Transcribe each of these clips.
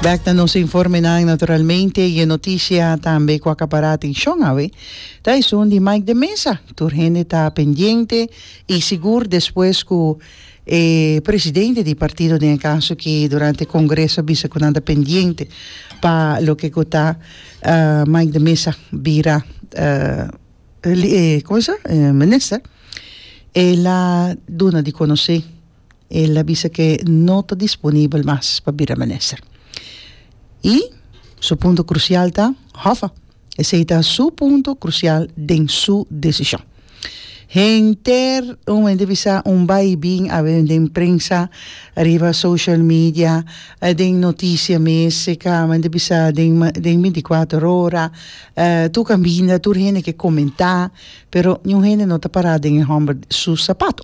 Bek na nos informenan naturalmente y e noticia tambe cu a acapara atencion awe ta esun di Mike de Meza. Tur hende ta pendiente y sigur despues cu e presidente di partido den e caso aki durante e congreso a bisa cu nan ta pendiente pa loke cu ta Mike de Meza bira Minister, el a duna di conoce. el a bisa ke no ta disponibel mas pa bira minister. I su punto krusial ta, Hoffa, esei ta su punto krusial den su desishon. Henter un hende bisa un bai i bin a wende den prensa, riba social media, den notisia mes, e kama hende bisa den den binti kuater ora, tur kambinda, tur hende ke komentá, pero niun hende no ta pará den e hòmber su sapato.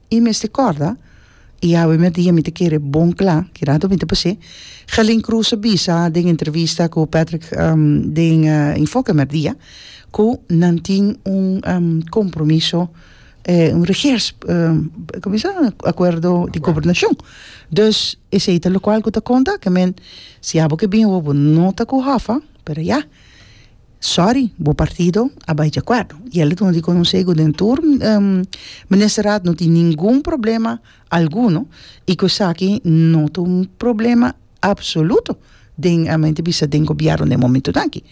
I mester kòrda, i awe mi a di, mi ta kere bon kla kidado mi ta pas'é, Gelin Croes a bisa den entrevista ku Patrick den Enfoke Merdia ku nan tin un kompromiso un regers komo se llama? Akuerdo di gobernashon. Dus esei ta lokual ku ta konta ke men si abo ke bin awo bo no ta ku hòf'a, pero ya. Sorry, bo partido a bai dje kuerdo. I el a duna di konosé ku den tur ministerat no tin ningun problema alguno i ku esaki no ta un problema apsoluto den, mi a bisa den gobièrnu den momentunan aki.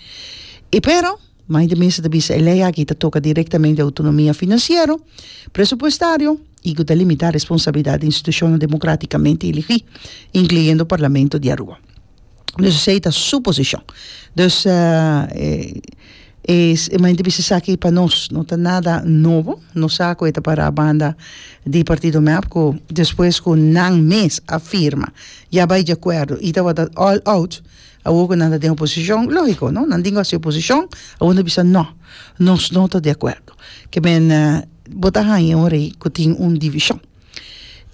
I pero, mai di mester ta bisa e lei aki ta toka direktamente outonomia finansiero, presupuestario i ku ta limitá responsabilidat di institushonnan demokratikamente elegí, inkluyendo Parlamento di Aruba. Dus esei ta su posishon. Dus, e manera di bisa esaki pa nos no ta nada nobo. Nos sa ku e ta pará banda di Partido Mep ku despues ku nan mes a firma, ya bai deakuerdo i tabata all out, awor ku nan ta den oposishon, lógiko no, nan tin ku hasi oposishon, awor nan ta bisa nò, nos no ta deakuerdo. Ke mene bo ta haña un rei ku tin un divishon.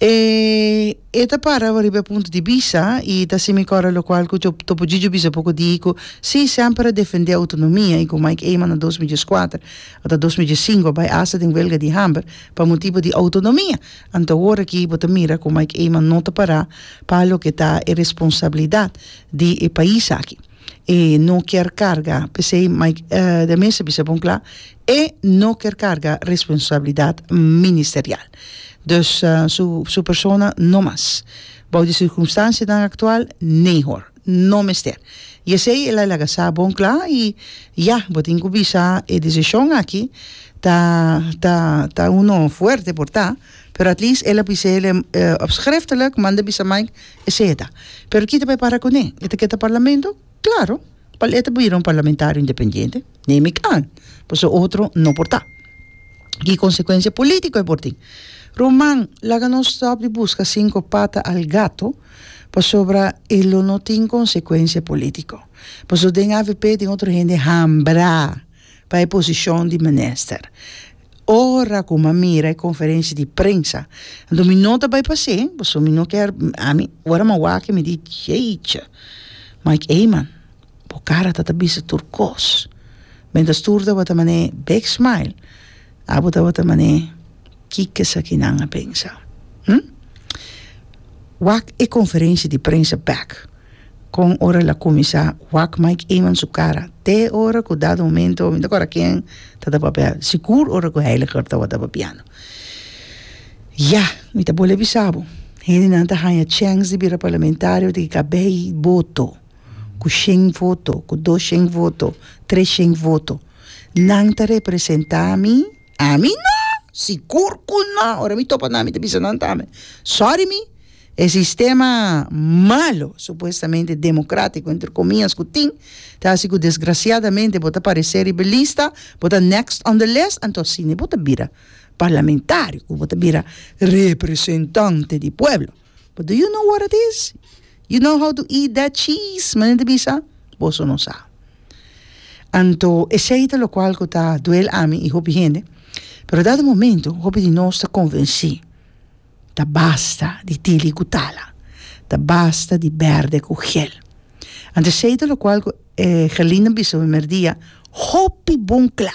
E e ta para riba e punto di bisa i ta así mi kòrda lokual ku Topo Djidjo bisa poko di ku sí semper a defendé outonomia i ku Mike Eman na dos mi dies kuater ota dos mi dies sinku a bai asta den huelga di hamber pa motibu di outonomia. Anto awor aki bo ta mira ku Mike Eman no ta pará pa loke ta e responsabilidat di e pais aki. E no kier karga, p'esei de mester bisa bon kla, e no kier karga responsabilidat ministerial. Dus su persona no mas. Bou di sirkumstansianan aktual, nee hoor, no mester. I esei el a laga sa bon kla i ya, bo tin ku bisa e desishon aki ta, ta, ta uno fuerte por ta. Pero at least el a bisa el op schriftelijk manda bisa Mike esei e ta. Pero kita pa e para kuné? E ta ke ta parlamento? Klaro, pa e ta bira un parlamentario independiente, neem ik aan, pasobra otro no por ta. Ki konsekuensia polítiko e por tin? Ruman, laga nos stòp di buska sinku pata al gato pasobra e lo no tin konsekuensia polítiko. Pasobra den avp tin otro hende hambrá. pa e posishon di minister. Ora ku mi a mira e konferensia di prensa, anto mi no ta bai pas'é, pasobra mi no kier, ami, ora mi a wak, mi di, Jeetje, Mike Eman, bo kara ta ta bisa tur kos. Benda Stuur tabata mané big smile, abo tabata mané. Ki ke esakinan a pensa? Hm? Wak e konferenshi di prensa bèk kon ora el a kuminsá wak Mike Eman su kara te ora ku dado momento mi ta kòrda ken ta da papel, sigur ora ku Heiliger tabata papiando. Ya, mi ta bole bisa bo, hendenan ta haña chèns di bira parlamentario di kabei boto, ku shen voto, ku dos shen voto, tres shen voto. Nan ta representá mi? Ami no! Sigur cu no! Ora mi topa nan mi ta bisa nan tambe, sorry mi, e sistema malo, supuestamente democratico entre comias, cu tin, ta haci cu desgraciadamente bo ta parece riba e lista, bo ta next on the list, anto asina bo ta bira parlamentario, cu bo ta bira representante di pueblo. But do you know what it is? You know how to eat that cheese? Manera di bisa, boso no sa. Anto esei ta lokual ku ta duel ami i hopi hende, pero dado momento hopi di nos ta konvensí, ta basta di tili ku tala, ta basta di bèrdè ku ghel. Anto esei ta lokual ku e Gerlinde a bisa primer dia hopi bon kla.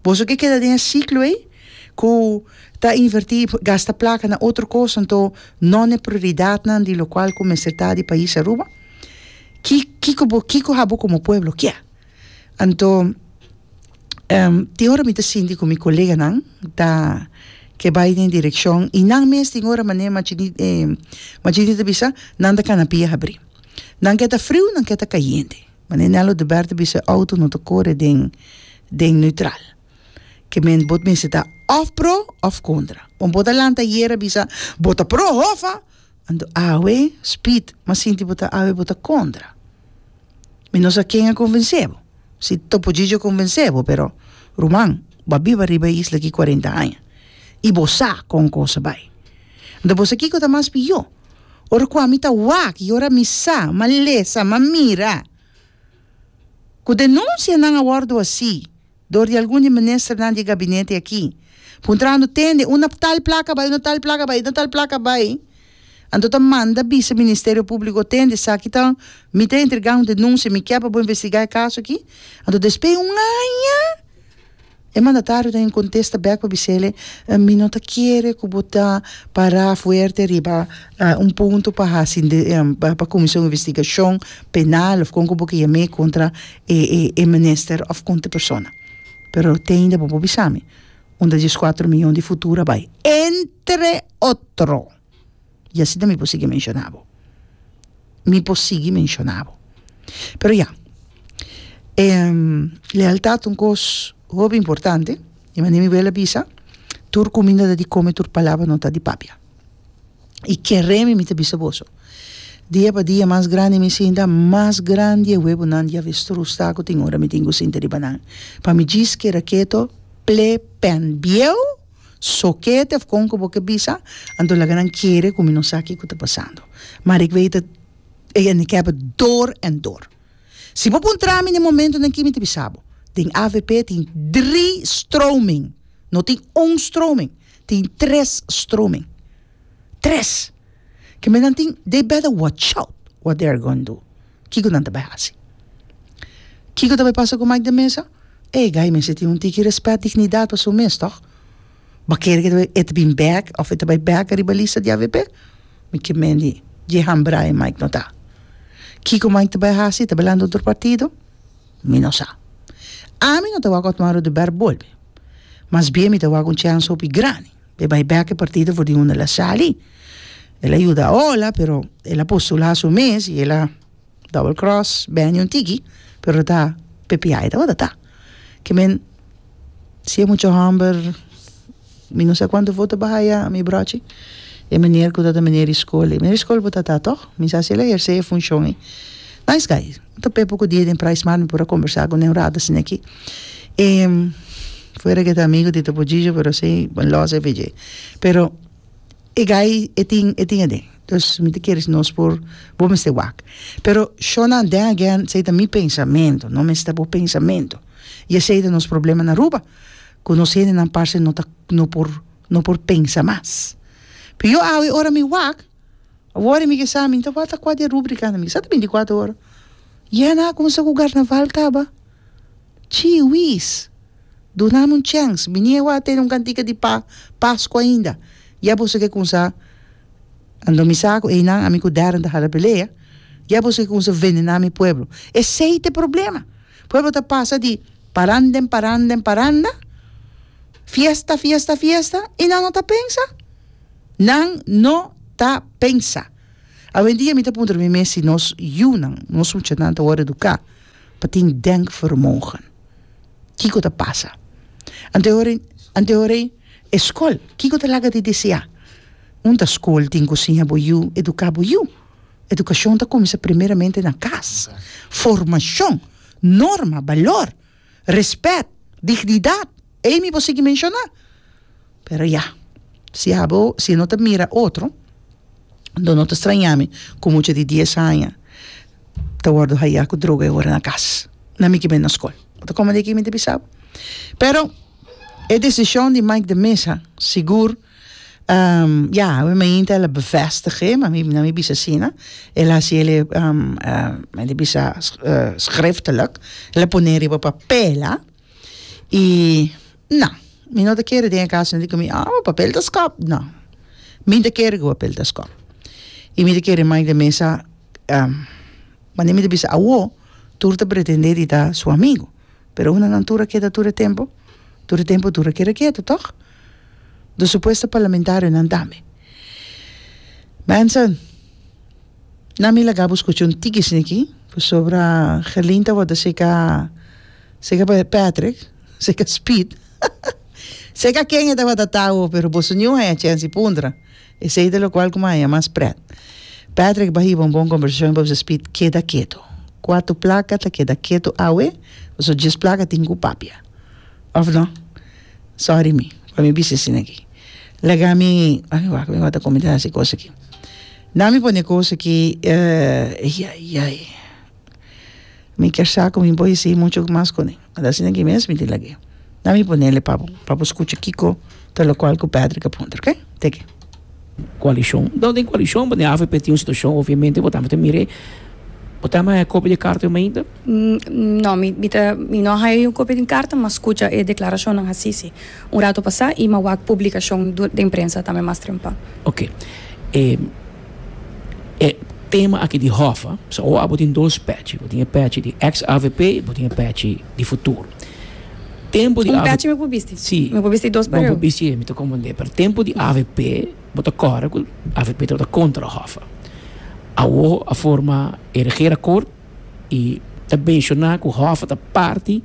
Boso ke keda den e siklo ei ku ta invertí, gasta plaka na otro kos, anto no na e prioridatnan di lokual ku mester ta di pais Aruba? Ki kiko bo kiko abo komo pueblo kia? Anto tin ora mi ta sinti ku mi koleganan ta ke bai den direkshon i nan mes tin ora manera Machine ta bisa nan ta kana pia habri. Nan ke ta friu, nan ke ta kayente. Mane Nello de Bert a bisa e auto no ta kore den den neutral. Ke mende bo mester ta òf pro òf kontra. Wen bo ta lanta ayera a bisa bo ta pro hofa anto awe spid mas sinti bo ta awe bo ta kontra. Mi no sa ken a konvensé bo. Si Topo Gigio a konvensé bo pero ruman bo a biba riba e isla aki kuarenta aña i bo sa kon kos a bai. Anto bo sa kiko ta mas pihó. Ora ku ami ta wak i ora mi sa, m'a lesa, m'a mira ku denunsianan a wòrdu hasí dor di algun di ministernan di e gabinete akí, puntrando tende unda tal plaka bai, unda tal plaka bai, unda tal plaka bai, anto ta manda bisa Ministerio Públiko, tende esaki ta, mi ta entregá un denunsia, mi kier pa bo investigá e kaso akí. Anto despues un aña. E mandatario ta incontesta bek pa bisele, Mi no ta kere cu bo ta para fuerte riba un punto pa haci pa cuminsa un investigacion penal of con cu bo ke yam'e contra e minister of contra e persona. Pero tein den bo por bisa mi unda diescuatro miyon di futuro a bay, entre otro. y asi ta mi por sigui menciona bo, mi por sigui menciona bo, pero ya, lealtad un cos hopi importante, y manera mi abuela a bisa, tur cuminda ta di come, tur palabra no ta di papia, y kere mi, mi ta bisa boso, dia pa dia mas grandi mi sinta, mas grandi e huevonan di avestruz ta cu tin ora mi tin cu sinta riba nan, pa mi djis keda keto, ple, pen, bieu! So ke tefkon ku bo ke bisa, anto laga nan kere ku mi no sa kiko ta pasando. Marik Wee ta gehandicapte door en door. Si bo puntra mi den e momentonan aki mi ta bisa bo, den avp tin dri stroming, no tin un stroming, tin tres stroming. Tres! Ke mentan tin, they better watch out what they are going do. Kiko nan ta bai hasi? Kiko ta bai pasa ku Mike den mesa? E guy mester tin un tiki rèspèt, dignidat pa su mes, tòg? Bo kere ku e ta bin bèk òf e ta bai bèk ariba lista di avp? Mi ke mendi dje hambraai Mike no ta. Kiko Mike ta bai hasi? E ta bai lanta un otro partido? Mi no sa. Ami no ta wak Otmar Oduber bolbe. Mas bien mi ta wak un chèns hopi grandi. E bai bek e partido for di unda el a sali, el a yuda Ola pero el a postula su mes y el a double cross Benny un tiki pero ta ppi tabata ta ke men si e mucha homber mi no sa cuanto voto ba haya mi brochi e meneer ku ta ta meneer Iskoli, meneer Iskoli bo ta ta toch? Mi sa si el a herse e funcion ei. Nice guy. Ta p'e poko dia den Price Mart mi por a kombersá ku ne un rato asina aki. E fuera ke ta amigu di Topollillo pero esei bo lòs effe dje. Pero e guy e tin e tin aden. Dus mi ta kere si nos por bo mester wak. Pero Shona then again esei ta mi pensamentu, no mester ta bo pensamentu. I esei ta nos problema na Aruba, ku nos hendenan parse no ta no por no por pensa mas. Yo awe ora mi wak Awor e mi ke sa, mi ta wòrta kua di e rúbrikanan, mi ke sa ta bintikuater ora. Yèna a kuminsá ku Karnaval kaba. Chiwis! Duna mi un chèns, mi ni a wòrdu a tene un kantika di pa Pasku ainda. Ya boso ke kuminsá Anto mi sa ku einan ami ku Darren ta hala pelea, ya boso ke kuminsá venená mi pueblo. Esei ta e problema. Pueblo ta pasa di paranda en paranda en paranda, fiesta, fiesta, fiesta, i nan no ta pensa. Nan no ta pensa. Awendia mi ta puntra mi mes si nos yunan, nos muchanan ta wòrdu eduká pa tin denkvermogen. Kiko ta pasa? Ante horin, ante horin e skol, kiko ta laga di deseá? Un ta skol tin ku siña bo yu eduká bo yu. Edukashon ta kuminsá primeramente na kas. Formashon, norma, balor. Respet, dignidat, ei mi por sigui menshona. Pero ya, si abo, si no ta mira otro, do no ta straña mi ku mucha di dies aña ta wòrdu haya ku droga e ora na kas, na mi kiba e na skol. Ta kòmende aki mi ta bisa bo. Pero e desishon di Mike de Meza sigur. Um, ya, yeah, mi mainta el a bevestig'e, ma mi, na mi bisa asina. El a hasié le, um, uh, men di bisa uh, schriftelijk. El a pon'é riba papel, a. I, na, mi no ta kere den e kas nan di ku mi, oh, bo papel ta skòp. No. Mi ta kere ku papel ta skòp. I mi ta kere mai den mesa, um, wanneer mi ta bisa awo, tur ta pretendé di ta su amigu. Pero una nan tur a keda tur e tempu, tur e tempu tur a keda ketu, tòg? do supuesto parlamentarionan tambe. Mensen, nan mi laga bo skucha un tikisni aki, pasobra Gerlin ta wòrdu seka, seka Patrick, seka Speed, seka ken e tabata ta awo, pero boso niu haña chèns di puntra, esei ta lokual ku mi a haña mas prèt. Patrick bai hiba un bon kombersashon heba ku Speed, keda ketu. Kuatu plaka ta keda ketu awe, pasobra djes plaka tin ku papia. of no sorry mi pa mi bisa asina aki laga mi ami wak mi wata comenta asi cos aki nan mi pone cos aki eyayay mi ker sa cu mi bo yesi mucho mas cone a ta asina aki mes mi tin lag'e nan mi ponele pa bo scucha kico ta locual cu Patrick a puntra ok teke. Koalishon. Enton den koalishon bo den avp tin un situashon obviamente bo tambe ta mir'e. Bo ta haya kopia di e karta di Meida? No, mi mi ta mi no a haya un kopia di un karta mi a skucha e deklarashonnan hasi si un ratu pasá i mi a wak publikashon den prensa tambe mas trempa. Oke. E e tema aki di hòf a, so awo abo tin dos pèchi. Bo tin e pèchi di eks avp i bo tin e pèchi. di futuro. Tempo di avp. Un pèchi mi por bisti? Si. Mi por bisti dos pareu? Bo por bisti e mi ta komprendé. Pero tempo di avp bo ta kòre ku avp tabata kontra Hoffa. Awo a forma e regeerakort i ta menshoná ku Hoffa ta parti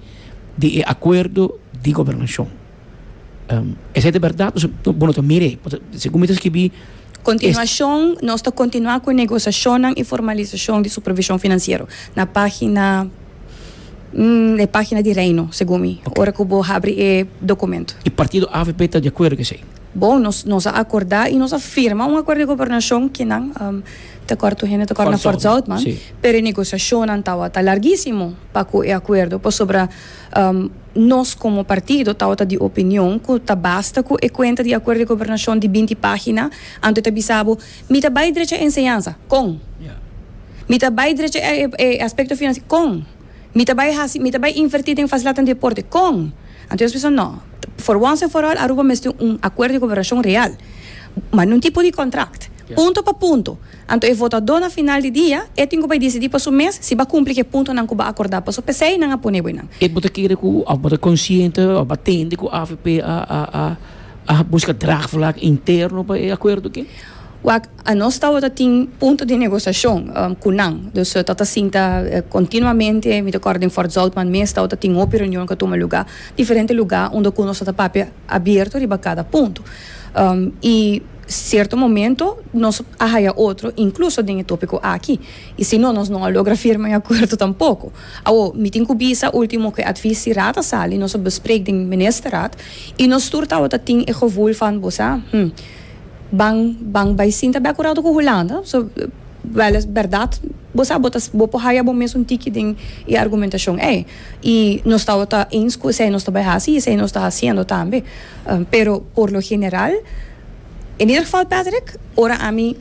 di e akuerdo di gobernashon. Esei ta bèrdat, bo no ta mira ei. Segun mi ta skibi. Kontinuashon, Nos ta kontinuá ku e negosiashonnan i formalisashon di supervishon finansiero, na página, e página di Reino, segun mi, ora ku bo habri e dokumentu. I partido avp ta di akuerdo ku esei? Bon, nos nos a akordá i nos a firma un akuerdo di gobernashon ku nan, ta kòrda tur hende ta kòrda nan Fort Zoutman, pero e negosiashonnan tabata largísimo pa ku e akuerdo, pasobra. Nos komo partido tabata di opinion ku ta basta ku e kuenta di Akuerdo di Gobernashon di binti página. Anto ta bisa bo, Mi ta bai drecha e enseñansa. Kon? Mi ta bai drecha e aspekto finansiero. Kon? Mi ta bai hasi, mi ta bai invertí den fasildat den deporte. Kon? Anto nos pensa, No. For wans en for òl, Aruba mester un Akuerdo di Gobernashon real. Mand'é un tipo di kòntrakt. Punto pa punto. Anto e votadó na final di dia e tin ku bai disidí pa su mes si ba kumpli ku e puntonan ku ba akordá paso p'esei nan a pone bo nan. Bo ta kere ku òf bo ta konsiente òf bo a tende ku avp a buska draagvlak interno pa e akuerdo aki? Wak, Nos tabata tin punto di negosiashon ku nan. Dus ta ta sinta kontinuamente. Mi ta kòrda den Fort Zoutman mes tabata tin hopi reunion ku a tuma lugá diferente lugá unda ku nos tabata papia abierto riba kada punto. I. Sierto momento nos a haya otro, incluso den e topico aki. Y si no, nos no a logra firma e acuerdo tampoco. Awor, mi tin cu bisa ultimo cu e advies si Raad a sali, nos a bespreek den Ministerraad y nos tur tawata tin e gevoel van bo sa, hm, ban, ban bay sinta bek un rato cu Hulanda, so, wel es berdad, bo sa, bo ta, bo por haya bo mes un tiki den e argumentacion ey. Y nos tabata eens cu esey nos ta bay haci y esey nos ta haciendo tambe. Pero por lo general, en ieder geval Patrick, ora ami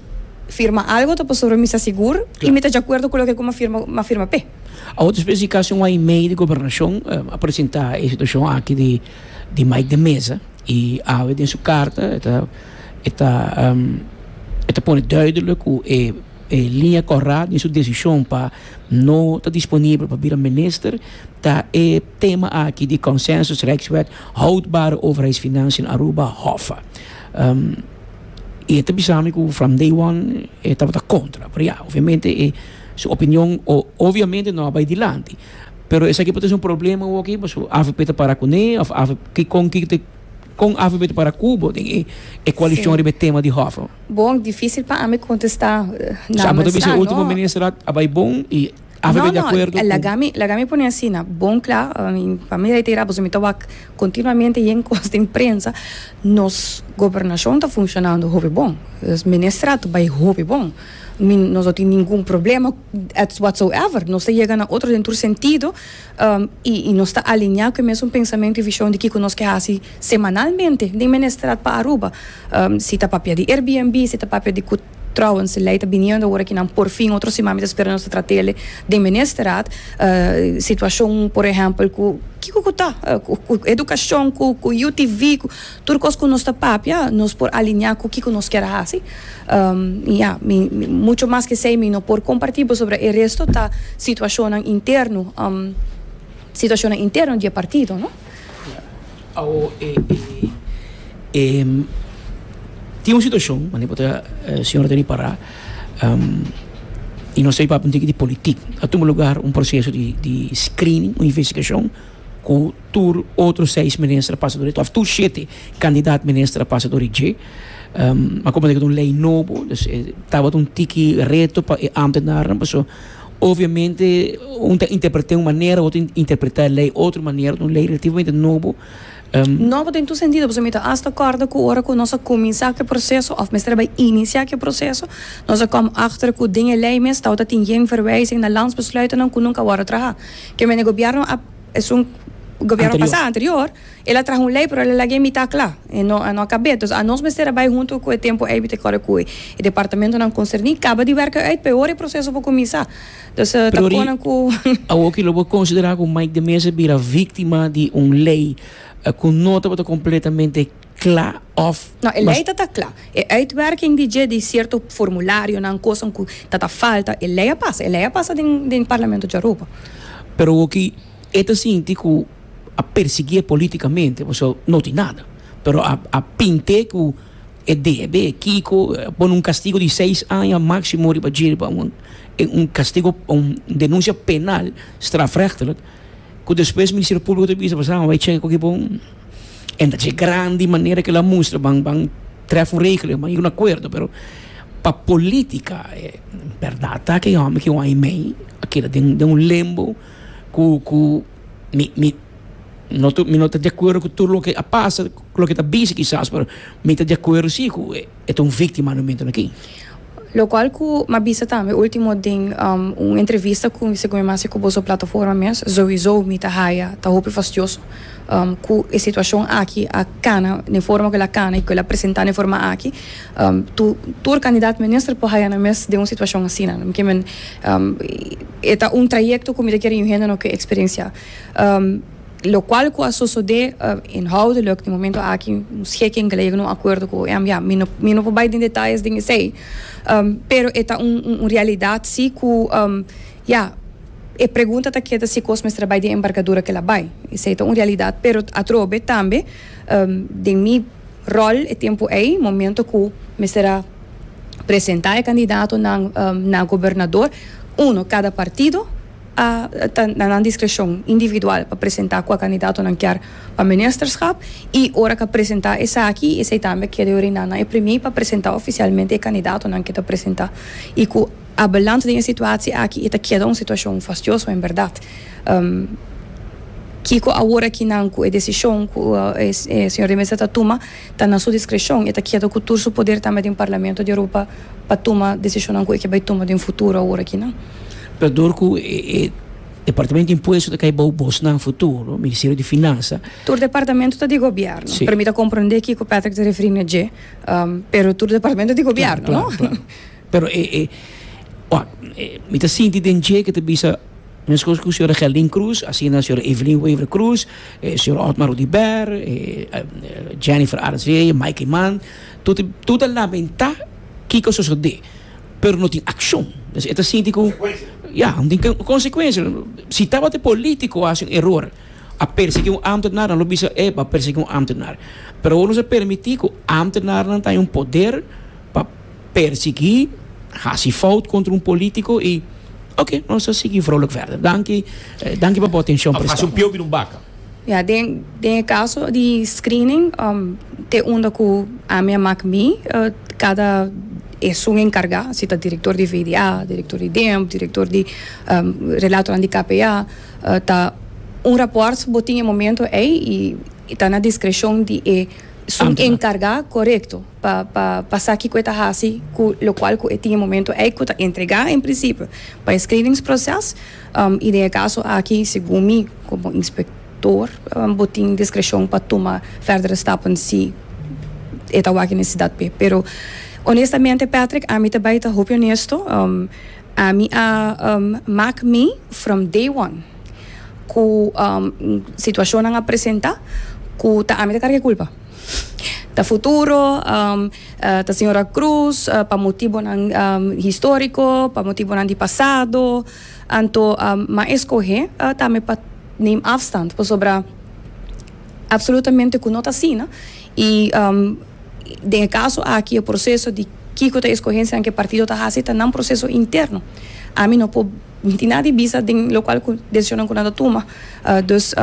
firma algo ta pasobra mi sta sigur y mi ta djacuerdo cu loke cu m'a firma, m'a firma p'e. Awor ta spera si casi un aña y medio di Gobernacion a presenta e situacion aki di di Mike de Meza y awe den su carta e ta e ta e ta pone duidelijk cu e e linea corra den su decision pa. No ta disponibel pa bira minister ta e tema aki di Consensus Rijkswet Houdbare Overheidsfinanciën in Aruba, Hoffa. E ta bisa mi ku from day one e tabata kontra. Pero ya, obviamente e su opinion obviamente no a bai dilanti. Pero esaki por ta ser un problema woki pasobra avp ta para kuné òf avp kikon ki ta. Kon Alphabet para Kubo den e e koalishon riba e tema di hòvel? Bon, difísil pa ami kontestá na Sa bo ta bisa e último ministerat a bai bon i Alphabet di akuerdo ku. No, no, laga mi laga mi pone asina, bon kla, i pa mi reiterá pasobra mi ta wak kontinuamente yen kos den prensa, nos gobernashon ta funshonando hopi bon, nos ministerat bai hopi bon, mi nos no tin ningun problema, whatsoever, nos ta yega na otro den tur sentido. I nos ta aliñá ku e mesun pensamentu i vishon di kiko nos ke hasi semanalmente den Ministrat pa Aruba. Si ta papia di Airbnb, si ta papia di ku Trouwens lei ta biniendo ora ki nan por fin otro siman mi ta spera nos ta trat'e den Ministrat. Situashon, por ehèmpel, ku kiko ku ta, ku edukashon, ku UTV. Tur kos ku nos ta papia nos por alineá ku kiko nos kier hasi. I ya, mi mucho mas ke esei mi no por kompartí boso pasobra e resto ta situashonnan interno, situashonnan interno di e partido, no? Awo e e tin un situashon, manera ku ta señor Teddy Pará, i nos ta papia un tiki di politik. A tuma lugar un proseso di di screening, un investigashon. ku tur otro seis minister a pasa dor e, òf tur shete kandidat minister a pasa dor e dje. A komo deke ta un lei nobo, dus e tabata un tiki reto pa e ámtenarnan pasobra obviamente un ta interpret'é un manera, otro ta interpret'é e lei otro manera, ta un lei relativamente nobo. Nobo den tur sentido pasobra mi ta asta kòrda ku ora ku nos a kuminsá ku e proseso òf mester a bai inisiá ku e proseso, nos a kòm achter ku den e lei mes tabata tin yen verwijzing na Landsbesluitennan ku nunka a wòrdu trahá. Ke mene gobièrnu a esun gobièrnu pasá anterior el a traha un lei pero el a laga e mitá kla e no a no a kab'é entonces anos mester a bai huntu ku e tempu eibit e kòrè ku e departamentunan konserní kaba di wèrk'e uit peor e proseso por kuminsá entonces ta Pero ri konan ku awor ki lo bo konsiderá ku Mike de Meza bira víktima di un lei ku no tabata kompletamente cla of No, e ley ta ta cla. E uitwerking di dje di cierto formularionan, cosanan cu ta ta falta, e ley a pasa. E ley a pasa den den Parlamento djaroba. Pero hoki e ta sinti cu a persiguié politicamente pasobra no tin nada. Pero a a pint'é cu e debe, e kico, pone un castigo di seis aña maximo riba dje riba un un castigo, un denuncia penal, strafrechtelijk. Ku despues Ministerio Públiko ta bisa pasobra nan a wei cheka ku aki bon. E ta chek grandi manera kila a mustra ban ban trèf un regeling, ban yega un akuerdo, pero pa polítika e bèrdat ta ku e hòmber ki wei mei a keda den den un lembo ku ku mi mi no ta mi no ta de akuerdo ku tur loke a pasa, ku loke ta bisa kisas, pero mi ta de akuerdo si ku e. E ta un víktima na momentonan aki. Lo cual cu m'a bisa tambe ultimo den un entrevista cu mi segun mi mester cu boso plataforma mes, Zoey Zo, mi ta haya, ta hopi fastioso cu e situacion aki a cana den forma cu el a cana y cu el a presenta den forma aki. Tu tur candidato minister por haya nan mes den un situacion asina. Mi ke men e ta un trayecto cu mi ta kere yu hende no ke experiencia. Locual cu a sosode inhoudelijk den momento aki, nos gek en geleger no acuerdo cu em, ya, mi no, mi no por bay den detalles den esey, pero e ta un, un, un realidad si cu, ya, e pregunta ta keda si cos mester a bay den e embargadura cu el a bay, esey ta un realidad, pero atrobe tambe den mi rol e tempo ey, momento cu mester a presenta e candidatonan na gobernador, uno, cada partido. a ta na nan diskreshon individual pa presentá kua kandidato nan kier pa ministerskap i ora ke a presentá esaki esei tambe a keda oriná na e premie pa presentá ofisialmente e kandidatonan ke ta presentá i ku abeland den e situatsie aki e ta keda un situashon fastioso en bèrdat kiko awor aki nan ku e desishon ku e señor de Meza ta tuma. Ta na su diskreshon, e ta keda ku tur su poder tambe den Parlamento di Europa pa tuma desishonnan ku e ke bai tuma den futuro awor aki nan. Pero dor ku e Departamento di Impuesto ta kai bou bosnan futuro, Ministerio di Finansa. Tur departamento ta di gobièrnu, pero mi ta komprondé kiko Patrick ta referí na dje, pero tur departamento ta di gobièrnu, no? Pero e, e, wak, mi ta sinti den dje ke ta bisa. Mescos cu señora Geldin Croes, asina señora Evelyn Wever Croes, señor Otmar Rudiber, Jennifer Arzee, Mikey Mann, toti tur ta lamenta kico a sosode, pero no tin accion. Entonces e ta sinti cu, ya, no tin consecuencia. Si tabata e politico a haci un error, a persegui un ambtenaar, nan lo bisa, ey, bo a persegui un ambtenaar. Pero awor nos a permiti cu ambtenaarnan ta den un poder pa. persiguí, hasi fout kontra un polítiko i ok, nos a sigui vrouwelijk verder. Danki, danki pa bo atenshon, Of hasi un presidente. piobi den un baka. Ya, den, den e kaso di screening, te unda ku ami a mak mi, kada esun enkargá, si ta direktor di VDA, direktor di DEMP, direktor di Relatonan di KPA, ta un rapòrt bo tin e momento ei i ta na diskreshon di esun enkargá, korekto. pa pa pa sa kiko e ta hasi ku lokual ku e tin e momento ei ku ta entregá en prinsipio pa e skrivingsproses i den e kaso aki segun mi komo inspektor bo tin diskreshon pa tuma vèrdere stappen si e ta wak e nesesidat p'e pero onestamente Patrick ami ta bai ta hopi onesto ami a mak mi from day one ku situashonnan a presentá ku ta ami ta karga e kulpa. Ta futuro ta señora Cruz pa motibonan histórico, pa motibonan di pasado, anto m'a escoge tambe pa neem afstand pasobra absolutamente cu no ta asina y den e caso aki e proceso di kico ta escogencianan cu e partido ta haci ta nan proceso interno, ami no por miti nada di bisa den locual cu decisionnan cu nan ta tuma. Dus,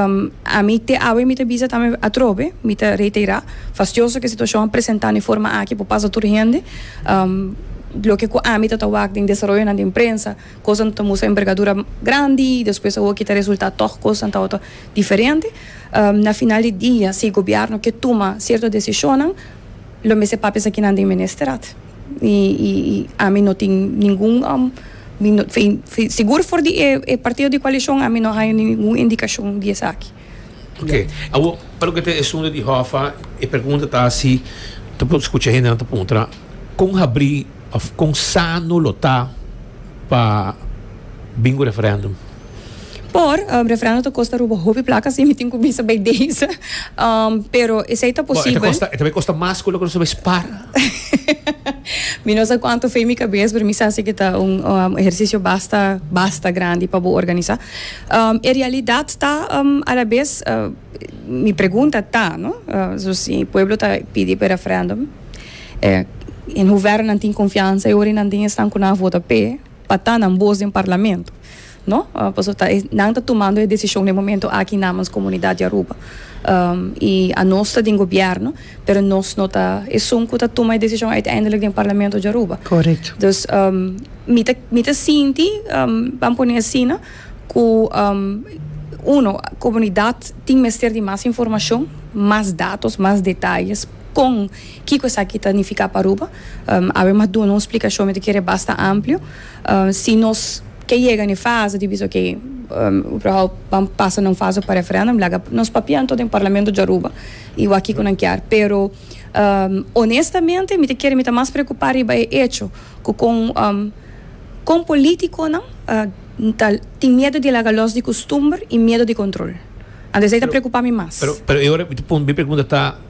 ami te awe mi ta bisa tambe atrobe, mi ta reiterá, fastioso ku e situashon a presentá n'e forma aki por pasa tur hende. Loke ku ami ta ta wak den desaroyonan den prensa, kosnan no ta mustra enbergadura grandi i despues awor kita resultá tòg kosnan tabata diferente. Na final di dia, si e gobièrnu ke tuma sierto desishonnan, lo mester papia esaki nan den Ministerat. Y y y ami no tin ningun sigur for di e partido di coalicion ami no haña ningun indicacion di esaki. Ok, awor pa loke ta e asunto di Hoffa e pregunta ta si ta por scucha hendenan ta puntra con habri of con sano lo ta pa bin cu referendum? Por, um, refrendo ta kosta ruba hopi plaka, así mi tin ku bisa bai deze. Um, pero esei ta Bo, e ta posibel. kosta, e ta bai kosta mas ku loke nos ta bai spara. Mi no sa kuantu fe mi kabes, pero mi sa si ke ta un um, ehersisio basta, basta grandi pa bo organisá. Um, e realidat ta um, alabes, uh, mi pregunta ta, no, uh, so si pueblo ta pidi pa e refrendum, eh, en hoeverrenan tin konfiansa e ora i nan tin esnan ku nan a vota p'e, pa ta nan bos den Parlamento, no? Paso ta e nan ta tumando e desishon den momento aki namens komunidat di Aruba. I anos ta den gobièrnu, pero nos no ta esun ku ta tuma e desishon uiteindelik den Parlamento di Aruba. Correct. Dus mi ta mi ta sinti, ban pone asina, ku uno komunidat tin mester di mas informashon, mas datos, mas detalles kon. Kiko esaki ta nifiká pa Aruba? Abel m'a duna un splikashon, mi ta kere basta amplio. Si nos ke yega na e fase di bisa, oke, Uberhau ban pasa na un fase pa referèndum, laga nos papia anto den Parlamento di Aruba i wak kiko nan kier. Pero, onestamente, mi ta kere mi ta mas preokupá riba e echo ku kon kon polítikonan ta tin miedu di laga lòs di kustumber i miedu di kontrol. Anto esei ta preokupá mi mas. Pero, pero e ora mi ta mi pregunta ta.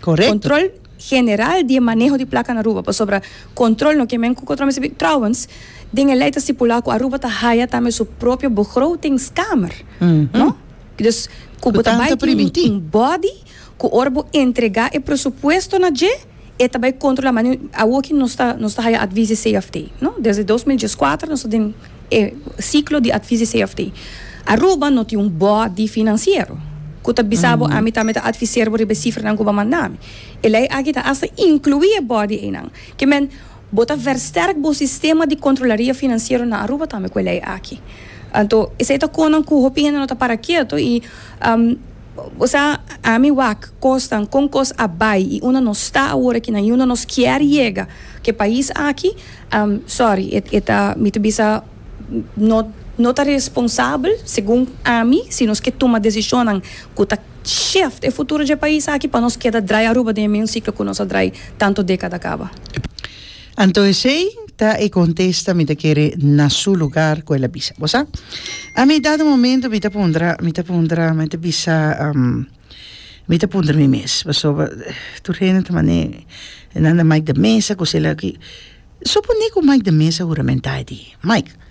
Correcto. Control general di e maneho di placa na Aruba, pasobra control no ke men cu control mester bin. Trouwens, den e ley ta stipula cu Aruba ta haya tambe su propio begrotingskamer, no? Dus, cu bo ta bay tin un body cu ora bo entrega e presupuesto na dje, e ta bay controla. Awor aki nos ta, nos ta haya advies di CFT, no? Desde dos mil dieskuater nos ta den. E siklo di atvis di CFT. Aruba no tin un bòrdi finansiero ku ta bisa bo ami tambe ta atviser bo riba e sifranan ku bo a manda mi. E lei aki ta asta inkluí e bòrdi einan. Ke men, bo ta vèrstèrk bo sistema di kontrolaria finansiero na Aruba tambe ku e lei aki. Anto, esei ta konan ku hopi hende no ta para ketu i bo sa ami wak kosnan kon kos a bai i unda nos ta awor akinan i unda nos kier yega ku e pais aki. Am, sorry, e, e ta, mi ta bisa, no, no ta responsabel, segun ami, si nos ke tuma desishonnan ku ta sheft e futuro dje pais aki pa nos keda drai Aruba den e mesun siklo ku nos a drai tantu dekada kaba. Anto esei ta e kontesta mi ta kere na su lugar ku el a bisa. Bo sa, ami dado momento mi ta pondra, mi ta pondra, mi ta bisa, am. Mi ta puntra mi mes pasobra tur hende ta mane nan na Mike de mesa ku sela ki, su pone ku Mike de mesa huramentai di Mike.